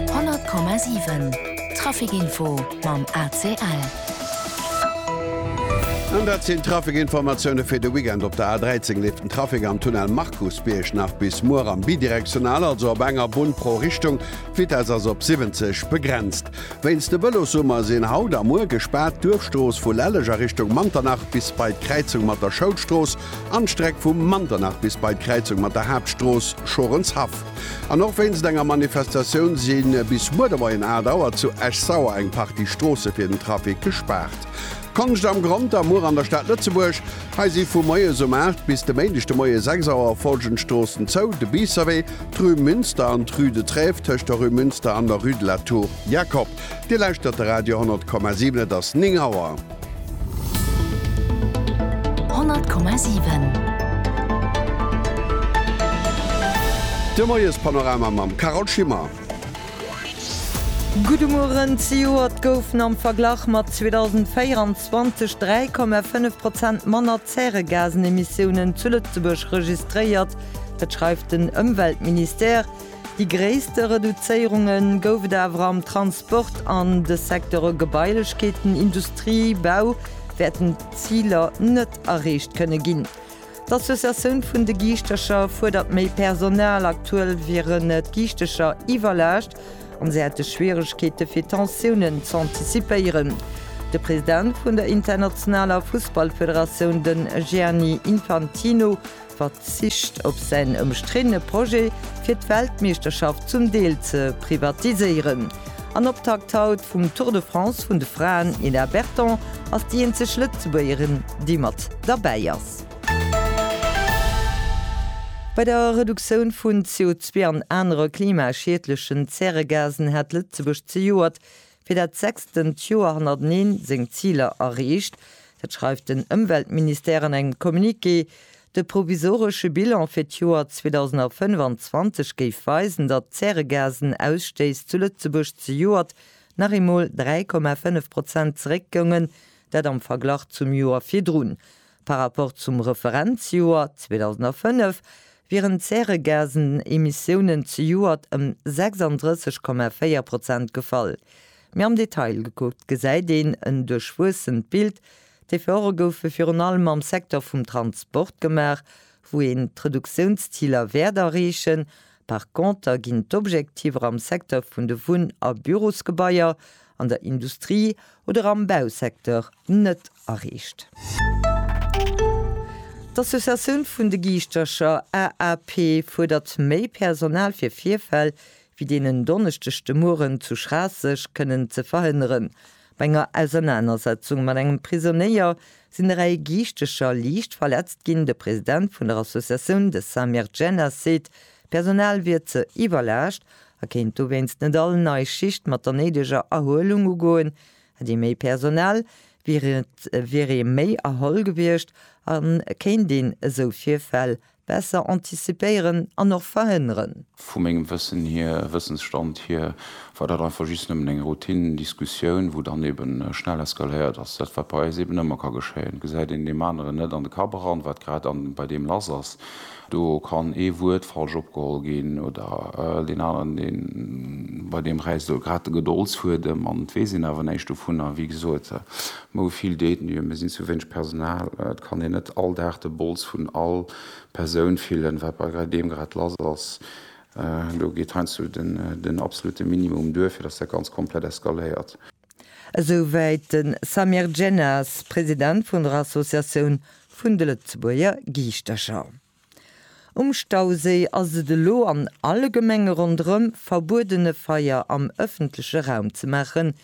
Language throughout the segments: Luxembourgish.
100,7 Trafic Info mam ACL. An dat sinn d'Trafic-Informatioune fir de Weekend. Op der A13 leeft den Trafic am Tunnel Markusbierg nach bis muer am Bidirektional, also op enger Bunn pro Richtung. D'Vitess ass op 70 begrenzt. Wéinst de Vëlossummer sinn haut a muer gespaart d'Duerfstrooss vu Lelleg a Richtung Manternach bis bei d'Kräizung mat der Schoulstrooss an d'Streck vu Manternach bis bei d'Kräizung mat der Haaptstrooss Schorenshaff. An och wéinst enger Manifestatioun si bis muer de Moien 8 Auer zu Esch-Sauer eng Partie Stroosse fir den Trafic gespaart. Konscht am Grond am Our an der Stad Lëtzebuerg. Hei si vu moies um 8 bis de Méindeg de Moie 6 Auer follgend Stroossen zou, de Biisserwee, d'Rue Münster an d'Rue de Trèves tëscht der Rue Münster an der Rue de la Tour Jacob. Dir lauschtert de Radio 100,7, et ass 9 Auer. De Moiespanorama mam Carole Schimmer. Gudde Mueren, Zejoert goufen am Verglach mat 2024 3,5 Prozent manner Zäregasenemissiounen zu Lëtzebuerg registréiert. Dat schreift den Ëmweltministère. Déi gréisste Reduzéierunge gouf et awer am Transport an de Secteure Gebailechkeeten, Industrie, Bau wäerten d'Ziler net erreecht kënne ginn. D'Associatioun vun de Giischtercher fuerdert méi Personal. Aktuell wieren d'Giischtercher iwwerlaascht an se hätte Schwieregkeete fir Tensiounen z'antizipéieren. De President vun der internationaler Fussballfederatioun, de Gianni Infantino, verzicht op säin ëmstriddene Projet fir d'Weltmeeschterschaft zum Deel ze privatiséieren. An Optakt haut vum Tour de France vun de Fraen, Nina Berton ass déi eenzeg Lëtzebuergerin, déi mat derbäi ass. Bei der Reduktioun vun CO2 an anere klimaschiedlechen Zäregasen hat Lëtzebuerg zejoert fir dat sechstent Joer hannerteneen seng Ziler erreecht. Dat schreift den Ëmweltministère an engem Communiqué. De provisoresche Bilan fir d'Joer 2025 géif weisen, datt d'Zäregasen-Ausstéiss zu Lëtzebuerg zejoert nach eemol 3,5 Prozent zeréckgoungen, dat am Verglach zum Joer virdrun. Par rapport zum Referenzjoer 2005 wieren d'Zäregasenemissiounen zejoert ëm 36,4 Prozent gefall. Méi am Detail gekuckt gesäit een en duerchwuessent Bild. D'Efforte goufe virun allem am Secteur vum Transport gemaach, wou een d'Reduktiounsziler wäert erreechen, Par conter ginn d'Objektiver am Secteur vun de Wunn a Bürosgebaier, an der Industrie oder am Bausecteur net erreecht. D'Associatioun vun de Giischtercher, AAP, fuerdert méi Personal fir Virfäll wéi deen en Donneschdeg de Mueren zu Schraasseg kënnen ze verhënneren. Bei enger Ausernanersetzung mat engem Prisonéier sinn e Rei Giichtecher liicht verletzt ginn. De President vun der Associatioun, de Samir Djennas, seet, d'Personal wier ze iwwerlaascht a kéint dowéinst net all nei Schicht mat der néideger Erhuelung ugoen. Hätt ee méi Personal, wier ee méi erholl gewiescht a kéint een esou Virfäll Besser antizipéieren an och verhënneren. Vu mengem Wëssen hier, Wëssensstand hier, war dat einfach just nëmmen eng Routine-Diskussioun, wou dann eben schnell eskaléiert ass. Dat, wat bei eis eben ëmmer ka geschéien. Gesäit een deem aneren net an de Kapp eran, wat grad bei deem lass ass, do kann ee Wuert falsch opgeholl ginn oder deen aneren, deen, bei deem räisst elo grad de Gedoldsfuedem an et weess een awer näischt dovunner. Wéi gesot, Mer hu vill Détenuen, mir sinn zu wéineg Personal. Et kann een net all Dag de Bols vun all Persoun fillen, wat bei deem grad lass ass. Do geet heiansdo den absolute Minimum duer, fir datt dat Ganzt komplett eskaléiert. Esouwäit de Samir Djennas, President vun der Associatioun vun de Lëtzebuerger Giischtercher. Um Stauséi ass et elo an alle Gemenge ronderëm verbueden e Feier am ëffentleche Raum ze maachen.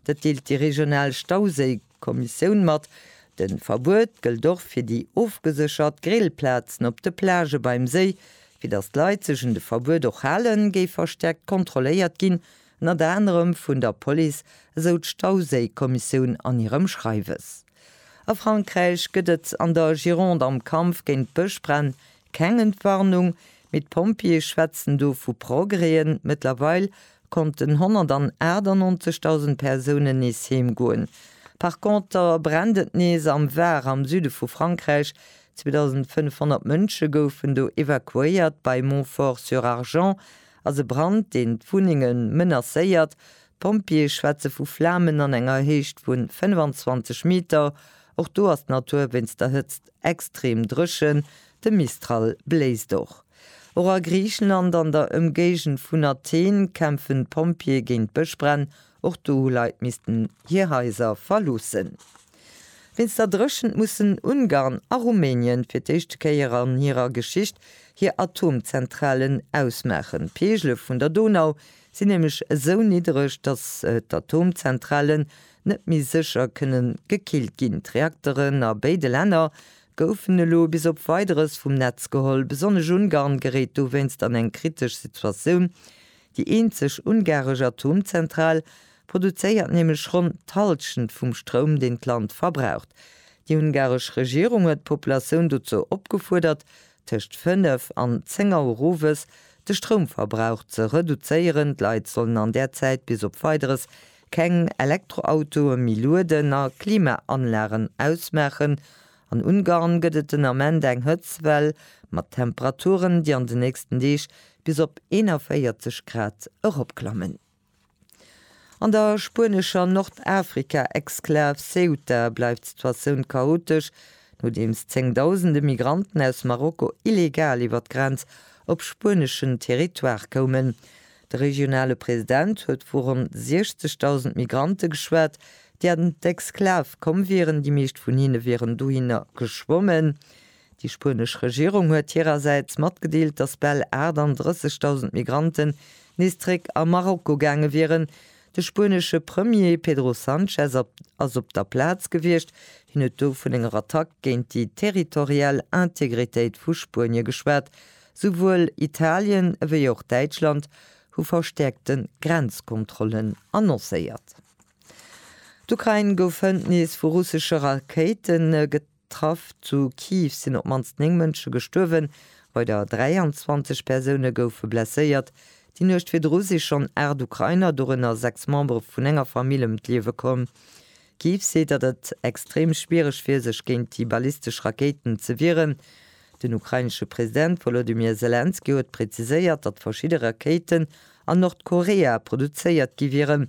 Dat deelt déi regional Stauséi-Kommissioun mat. De Verbuet gëllt och fir déi ofgeséchert Grillplazen op de Plagë beim Séi. Fir datt d'Leit sech un de Verbuet och halen, géif verstäerkt kontrolléiert ginn, ënnert anerem vun der Police, esou d'Stauséi-Kommissioun an hirem Schreiwes. A Frankräich gëtt et an der Gironde am Kampf géint d'Bëschbränn keng Entwarnung, mee d'Pompjeeë schwätzen do vu Progrèsen. Mëttlerweil konnten 198.000 Persounen nees heem goen. Par Conter brennt et nees am Var, am Süde vu Frankräich. 2.500 Mënsche goufen do evakuéiert. Bei Montfort-sur-Argens ass e Brand, deen d'Wunnenge menacéiert. D'Pompjeeë schwätze vu Flamen an enger Héicht vun 25 Meter. Och do ass d'Natur wéinst der Hëtzt extrem dréchen, de Mistral bléist och. Och a Griicheland, an der Ëmgéigend vun Athen, kämpfen d'Pompjeeë géint Bëschbränn. Och do hu Leit missten hir Haiser verloossen. Wéinst der Dréchent mussen Ungarn a Rumänien fir d'éischte Kéier an hirer Geschicht hir Atomzentralen ausmaachen. D'Peegele vun der Donau sinn nämlech esou niddreg, datt d'Atomzentralen net méi sécher kënnen gekillt ginn. D'Reakteren a béide Länner goufen elo bis op Weideres vum Netz geholl. Besonnesch Ungarn geréit dowéinst an eng kritesch Situatioun. Déi eenzeg ungaresch Atomzentral produzéiert nämlech ronn d'Hallschent vum Stroum, deen d'Land verbraucht. Déi ungaresch Regierung huet d'Populatioun dozou opgefuerdert, tëscht 5 an 10 Auer owes de Stroumverbrauch ze reduzéieren. D'Leit sollen an där Zäit bis op Weideres keng Elektroautoe méi lueden a Klimaanlagen ausmaachen. An Ungarn gëtt et den Ament eng Hëtztwell mat Temperaturen, déi an den nächsten Deeg bis op 41 Grad eropklammen. An der spuenescher Nordafrika-Exklav Ceuta bleift d'Situatioun chaotesch, nodeems zéngdausende Migranten aus Marokko illegal iwwer d'Grenz op spueneschen Territoire koumen. De regionale President huet vu ronn 60.000 Migrante geschwat, déi an d'Exklav komm wieren, déi meescht vun hinne wieren dohinner geschwommen. Déi spuenesch Regierung huet hirersäits matgedeelt, datt bal 38.000 Migranten nees zréck a Marokko gaange wieren. De spuenesche Premier Pedro Sanchez ass op der Plaz gewiescht. Hien huet do vun enger Attack géint déi territorial Integritéit vu Spuenie geschwat. Souwuel Italien ewéi och Däitschland hu verstäerkte Grenzkontrollen annoncéiert. D'Ukrain gouf hënt nees vu russesche Rakéite getraff. D'Traff zu Kiew sinn op d'mannst 9 Mënsche gestuerwen, weider 23 Persoune goufe blesséiert. Déi Nuecht virdru si schonn 8 Ukrainer, dorënner 6 Membere vun enger Famill, ëm d'Liewe komm. Kiew seet, datt et extrem schwiereg wier, sech géint déi ballistesch Rakéiten ze wieren. Den ukrainesche President Wolodymyr Selenskyj huet präziséiert, datt verschidde Rakéiten a Nordkorea produzéiert gi wieren.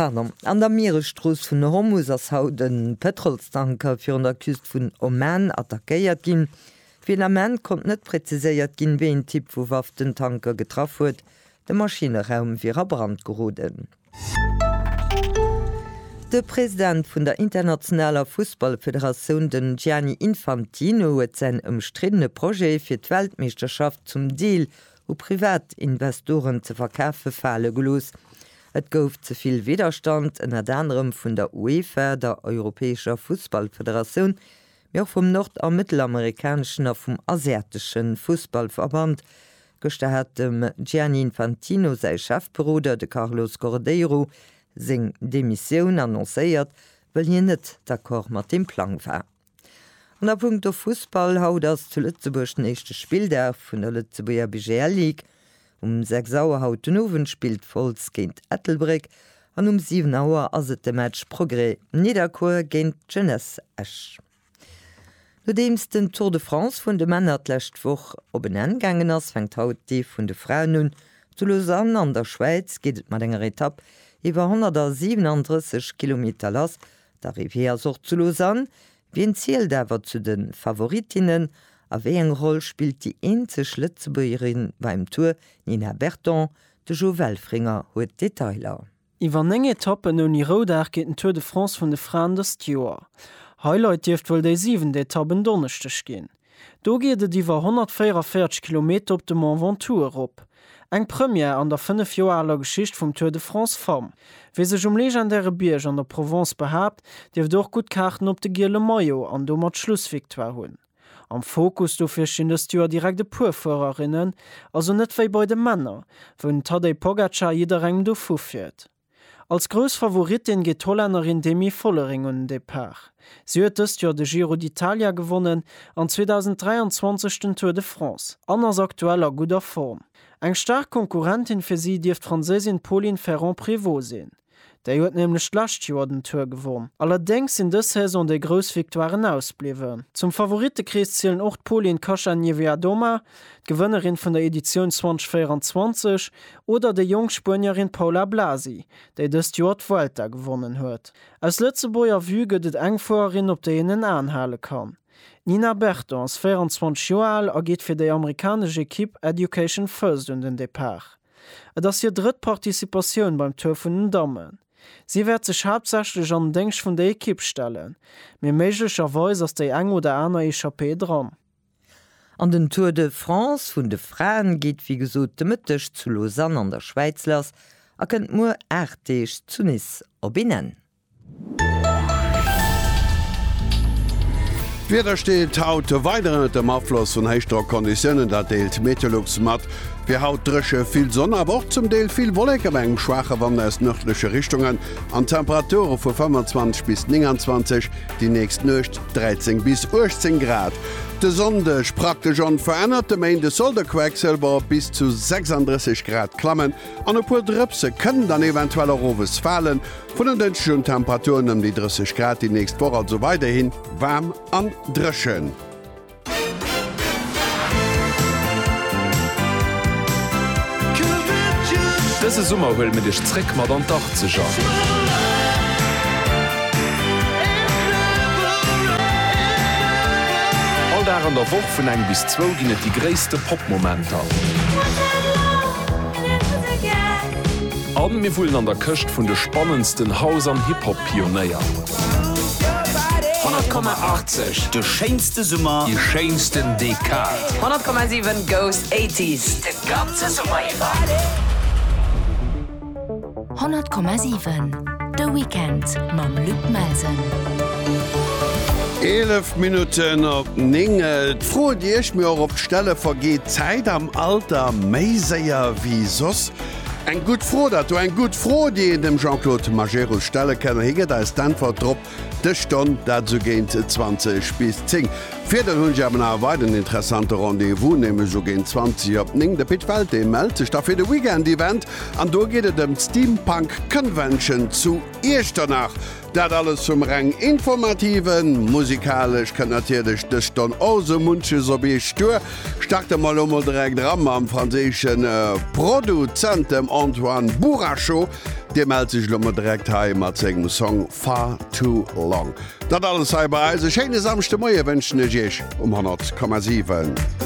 An der Mieresstrooss vun Hormus ass haut e Pëtrolstanker virun der Küst vun Oman attackéiert ginn. Fir den Ament konnt net präziséiert ginn, wéi een Typ vu Waff den Tanker getraff huet. De Maschinneraum wier a Brand geroden. De President vun der internationaler Fussballfederatioun, den Gianni Infantino, huet säin ëmstriddene Projet fir d'Weltmeeschterschaft zum Deel u Privatinvestoren ze verkafe fale gelooss. Et gouf ze vill Widderstand, ënnert anerem vun der UEFA, der europäescher Fussballfederatioun, mee och vum nord a mëttelamerikaneschen a vum asiatesche Fussballverband. Gëschter hat dem Gianni Infantino säi Chefberoder, de Carlos Cordeiro, seng Demissioun annoncéiert, wëll hien net d'accord mat deem Plang war. An a punkto Fussball, haut ass zu Lëtzebuerg den éischte Spilldag vun der Lëtzebuerger BGL Ligue. Um 6 Auer haut den Owend spillt Wolz géint Ettelbréck an um 7 Auer ass et de Match Progrès Nidderkuer géint d'Jeunesse Esch. Nodeems den Tour de France vun de Männer d'lescht Woch op en Enn gaangen ass, fänkt haut dee vun de Fraen un. Zu Lausanne an der Schwäiz geet et mat enger Etapp iwwer 137 Kilometer lass D'Arrivée ass och zu Lausanne. Wien zielt awer zu de Favorittinnen a wéi eng Roll spillt déi eenzeg Lëtzebuergerin beim Tour, Nina Berton? De Jo Welfringer huet d'Detailer. Iwwer 9 Etappen ouni Roudag geet den Tour de France vun de Fraen dëst Joer. Highlight dierft wuel déi siwent Etapp en Donneschdeg ginn. Do geet et iwwer 144 Kilometer op de Mont Ventoux erop. Eng Première an der 5 Joer aler Geschicht vum Tour de France Femmes. Wie sech um legendäre Bierg an der Provence behaapt, dierft och gutt Kaarten op de giele Maillot an domat d'Schlussvictoire hunn. Am Fokus dofir stinn dëst Joer direkt e puer Fuererinnen, also net wéi bei de Männer, wou den Tadej Pogacar jidderengem dovu fiert. Als grouss Favorittin geet d'Hollännerin Demi Vollering un den Depart. Si huet dëst Joer de Giro d'Italia gewonnen an 2023 den Tour de France an ass aktuell a gudder Form. Eng staark Konkurrentin fir si dierft d'Franséisin Pauline Ferrand-Prévot sinn. Déi huet nämlech d'lescht Joer den Tour gewonn. Allerdéngs sinn dës Saison déi grouss Victoiren ausbliwwen. Zum Favorittekrees zielen och d'Polin Kacha Niewiadoma d'Gewënnerin vun der Editioun 2024, oder déi jonk Spuenierin Paula Blasi, déi dëst Joer d'Vuelta gewonnen huet. Aus Lëtzebuerger Vue gëtt et eng Fuererin, op déi een en Aen hale kann. D'Nina Berton ass 24 Joer al a geet fir déi amerikanesch Ekipp Education First un den Depart. Et ass hir drëtt Participatioun beim Tour vun den Dammen. Si wäert sech haaptsächlech an den Déngscht vun der Ekipp stellen, mee méiglecherweis ass déi eng oder aner Echappée dran. An den Tour de France vun de Fraen geet wéi gesot de Mëtteg zu Lausanne an der Schwäiz lass a kënnt muer 8 Deeg zu Nice op een Enn. D'Wieder steet haut weider ënnert dem Afloss vun Héichdrockconditiounen, dat deelt d'Meteolux mat. Et wier haut dréche, vill Sonn, awer och zum Deel vill Wolleke bei engem schwaache Wand aus nërdleche Richtungen an Temperature vu 25 bis 29. Déi nächst Nuecht 13 bis 18 Grad, de Sonndeg praktesch onverännert, de Méinde soll de Quecksilber op bis zu 36 Grad klammen an e puer Drëpse kënnen dann eventuell och owes falen. Vun den Dënschdeg un Temperaturen ëm déi 30 Grad, déi nächst Woch also weiderhi waarm an dréchen. Dëse Summer huele mir dech zréck mat an d'Achtzeger. All Dag an der Woch vun eng bis zwou ginn et déi gréisste Pop-Momenter. A mir wullen an der Këscht vun de spannendsten House an Hip-Hop-Pionéier. 100,80 De schéinste Summer, déi schéinsten Dekad. 100,7 goes 80s de ganze Summer iwwer. 100,7 De Weekend mam Luc Melsen. 11 Minutten op 9. Et froet Dir Iech, mee och op d'Stelle vergeet d'Zäit am Alter méi séier wéi soss. Eng gutt Fro, dat do, eng gutt Fro, déi een dem Jean-Claude Majerus stelle kënn, a hie gëtt eis d'Äntwert drop dës Stonn, dat esou géint 20 bis 10. Virder hunn ech awer nach e weideren interessante Rendez-vous, nämlech esou géint 20 op 9. De Pit Welté mellt sech da fir de Weekend-Event an do geet et ëm d'Steampunk Convention zu Iechternach. Dat alles zum reng informativen. Musikalesch kënnt natierlech dës Stonn och esou munches op Iech duer. Starte mer elo mol direkt era mam franséische Produzent, dem Antoine Bouracho. Dee mellt sech elo mol direkt hei mat sengem Song Far Too Long. Dat alles hei bei eis. E schéine Samschdemoie wënschen ech Iech um 100,7.